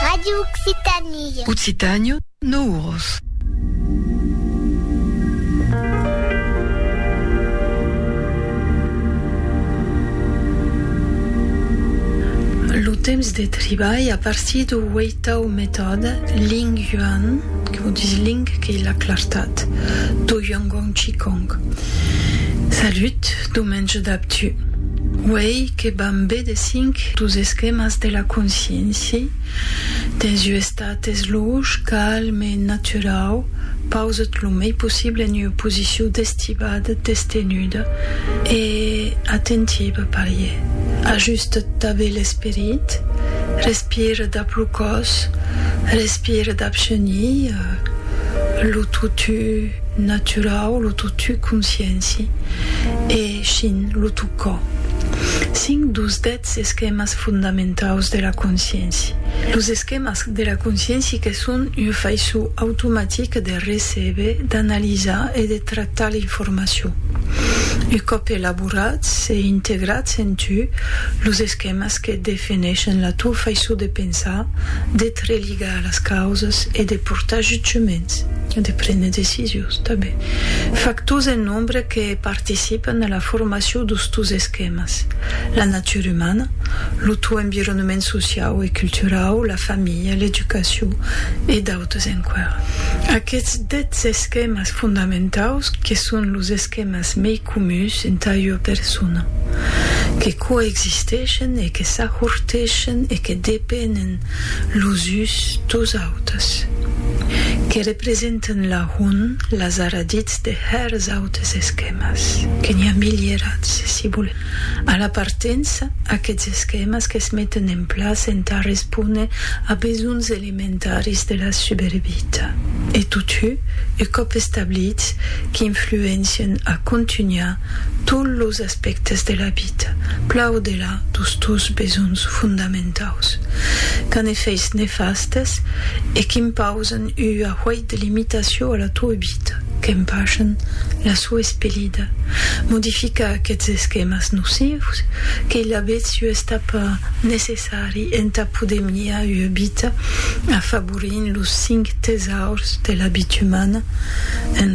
Radio Occitanie. Occitània, no uros. Lo temps de tribalh a partir do ueitau metòd Ling Yuan, que vos dis Ling qu'ei la clartat, do Yuanguang Qigong. Salut, domenge dab tu. Uei, que van be de cinc dus esquèmas de la consciéncia dens ua estat esluch, calm e naturau, pausat lo mei possible en ua posicion d'estivada, destenuda e atentiva, parier, ajustat dab e l'esperit, respira dab lo còs, respira dab genilh, lo totu naturau, lo totu consciéncia e. Echin, lo tocò. Cinc dos dètz esquèmas fondamentaus de la consciéncia. Los esquèmas de la consciéncia que son ua faiçon automatica de recéber, d'analizar e de tractar l'informacion. Un còp elaborats e integrats en tu, los esquèmas que defineishen la tua faiçon de pensar, de te religar a las causas e de portar jutjaments, de prene decisions tanben, factors en nombre que, participan a la formacion d'ustus esquèmas, la natura umana, lo tau environnement sociau e culturau, la familha, l'educacion e d'autres enqüèra. Aquests dètz esquèmas fondamentaus que son los esquèmas mei comuns entà ua persona, que coexisteishen e que s'ajorteishen e que depenen Los us dos autes, que representen lahont las aradits de hèrs autes esquèmas, que n'i a milierats, si volèm. A la partença, aquests esquèmas que's meten en plaça entà respóner a besonhs elementaris de la subervita e totu u còp establits qu'influencien a contunhar tots los aspèctes de la vita, plan o de la. satisfar dos tos besonhs fondamentaus, qu'an efèits nefastes e qu'impausan ua huèit de limitacion a la toa vita, qu'empachan la soa espelida, modificar aqueths esquèmas nocius, qu'ei lavetz ua estapa necessari entà poder miar ua vita afavorint los cinc tesaurs de la vita umana, en